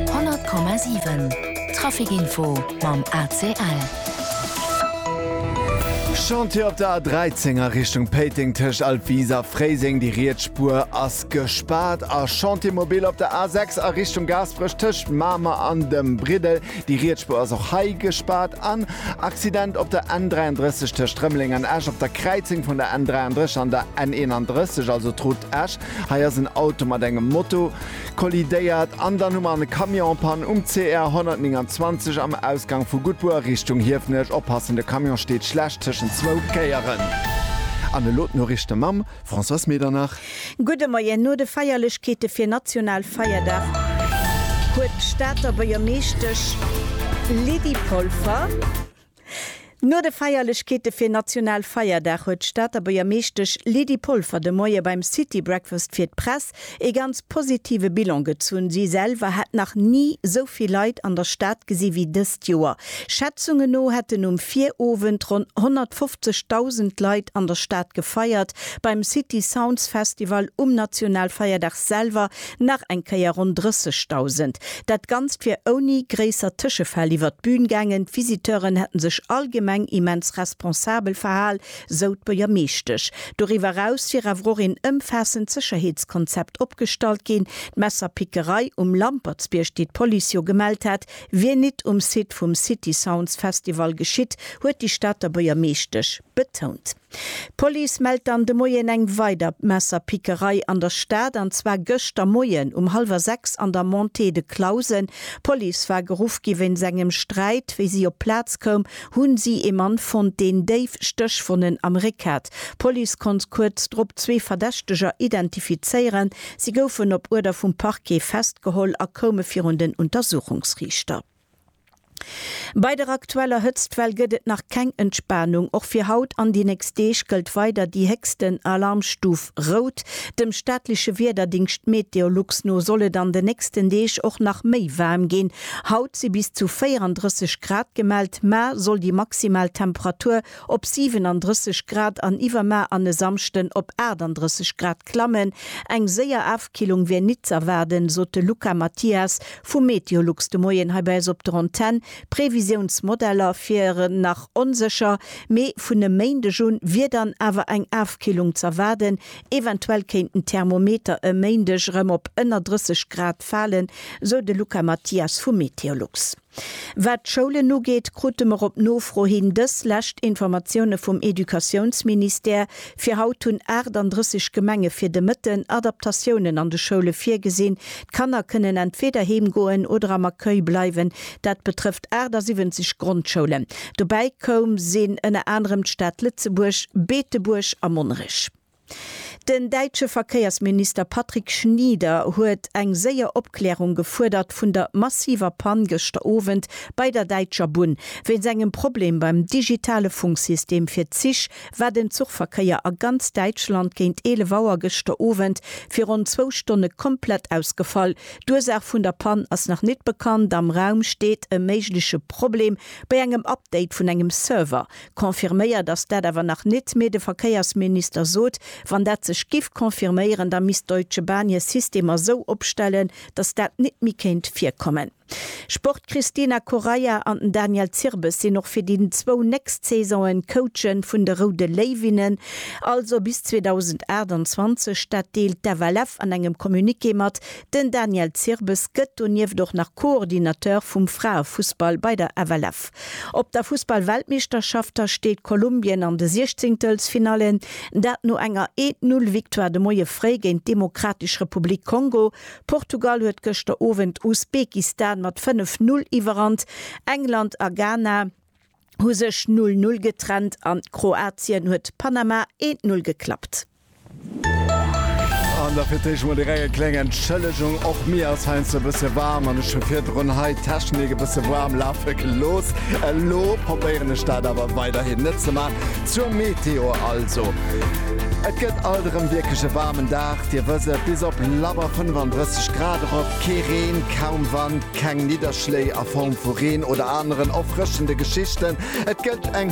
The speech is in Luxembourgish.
100,7 Trafic Info mam ACL. Chantier op der A13 a Richtung Péiteng tëscht Altwis a Fréiseng, déi riets Spuer ass gespaart. A Chantier mobil op der A6 a Richtung Gaasperech tëscht Mamer an dem Briddel, déi riets Spuer ass och hei gespaart. An Accident op der N33 tëscht Rëmeleng an Esch op der Kräizung vun der N33 an der N31, also d'Route Esch. Hei ass en Auto mat engem Moto kollidéiert an dann hu mer an e Camion en Panne um CR 129 am Ausgang vu Guttbuer Richtung Hiefenech. Oppassen, de Camion steet schlecht tëschent zwou Kéieren. An elo d'Noriichte mam Françoise Medernach. Gudde Moien. No de Feierlechkeete fir Nationalfeierdag huet d'Stater Buergermeeschtesch Lydie Polfer, No de Feierlechkeete fir National Feierdag huet d'Stater Buergermeeschtesch Lydie Polfer de Moie beim City Breakfast fir d'Press ee ganz positive Bilan gezunn. Si selwer hätt nach ni sou vill Leit an der Stad gesi wéi dëst Joer. Schätzungen no hätten um Virowend ronn 150.000 Leit an der Stad gefeiert. Beim City Sounds Festival um National Feierdag selwer Nach eng Kéier ronn 30.000. Dat Ganzt wier ouni gréisser Tëschefäll iwwert d'Bün gaangen. D'Visiteuren hätten sech allgemeng immens responsabel verhal, sou d'Buergermeeschtesch. Doriwwer eraus wier awer och een ëmfaassend Sécherheetskonzept opgestallt ginn. D'Messerpickerei um Lampertsbierg, déi d'Police jo gemellt hat, wier nit um Site vum City Sounds Festival geschitt, huet déi Stater Buergermeeschtesch betount. D'Police mellt dann de Moien eng weider Messerpickerei an der Stad, an zwar gëschter Moien um hallwer sechs an der Montée de Clausen. D'Police war geruff gi wéinst engem Sträit. Wéi si op d'Plaz koum, hu si ee Mann fonnt, deen déif Stéchwonnen am Réck hat. D'Police konnt kuerz drop zwee Verdächteger identifizéieren. Si goufen op Uerder vum Parquet festgeholl a koume virun den Untersuchungsriichter. Bei der aktueller Hëtztwell gëtt et nach keng Entspanung. Och fir haut an déi nächst Deeg gëllt weider déi héchsten Alarmstuf Rout. Dem staatleche Wiederdingscht Meteolux no soll et an den nächsten Deeg och nach méi waarm ginn. Haut si bis zu 34 Grad gemellt, mar soll déi maximal Temperatur op 37 Grad an iwwermaer an e Samschden op 38 Grad klammen. Eng séier Afkillung wär nit z'erwaarden, sot de Luca Mathias vu Meteolux de Moien hei bei eis op der Antenn. D'Previsiounsmodeller wieren nach onsécher, mee vun e Méindeg un wier dann awer eng Afkillung z'erwaarden. Eventuell kéinten d'Thermometer e Méindeg erëm op ënner 30 Grad falen, sou de Luca Mathias vu Meteolux. Wat d'Schoulen ugeet, krute mer op Nofro hin dës lescht Informatioune vum Educatiounsministère. Fir haut hunn 38 Gemenge fir de Mëtten Adaptatiounen an de Schoule virgesinn. D'Kanner kënnen entweeder heem goen oder am Accueil bleiwen. Dat betrëfft 78 Grondschoulen. Dobäi koum sinn ënner anerem d'Stad Lëtzebuerg, Beetebuerg a Monnerech. Den däitsche Verkéiersminister Patrick Schnieder huet eng séier Opklärung gefuerdert vun der massiver Pann gëschter Owend bei der Däitscher Bunn. Wéinst engem Problem beim digitale Funksystem fir d'Zich war den Zuchverkéier a ganz Däitschland géint 11 Auer gëschter Owend fir ronn zwou Stonne komplett ausgefall. D'Ursaach vun der Pann ass nach nit bekannt. Am Raum steet e méigleche Problem bei engem Update vun engem Server. Confirméiert ass dat awer nach nit, mee de Verkéiersminister sot, wann dat sech giff confirméieren, da misst d'Deutsche Bahn hir System esou opstellen, datt dat nit méi kéint virkommen. Sport, D'Cristina Correia an den Daniel Zirbes sinn och fir déi zwou nächst Saisone Coache vun de Roude Léiwinnen, also bis 2028. Dat deelt d'FLF an engem Communiqué mat, Den Daniel Zirbes gëtt donieft och nach Coordinateur vum Fraefussball bei der FLF. Op der Fussballweltmeeschterschafter steet Kolumbien an de Siechzéngtelfsfinallen, dat no enger Eent Null Victoire de Moie fréi géint d'Demokratesch Republik Kongo. Portugal huet gëschter Owend Usbekistan mat 5 Null iwwerrannt, England a Ghana hu sech Null Null getrennt an Kroatien huet Panama Eent Null geklappt. An da fir d'éischt mol direkt eng kléng Entschëllegung. Och mir ass heiansdo e bësse waarm an ech hu virdrun hei d'Technik e bësse waarm lafe gelooss. Elo probéieren ech dat awer weiderhin net ze maachen. Zur Meteo also, Et gëtt alt erëm wierklech e waarmen Dag. Dir wësst et, bis op labber 35 Grad erop. Kee Reen, kaum Wand, keng Nidderschléi a Form vu Reen oder aneren erfrëschende Geschichten. Et gëtt eng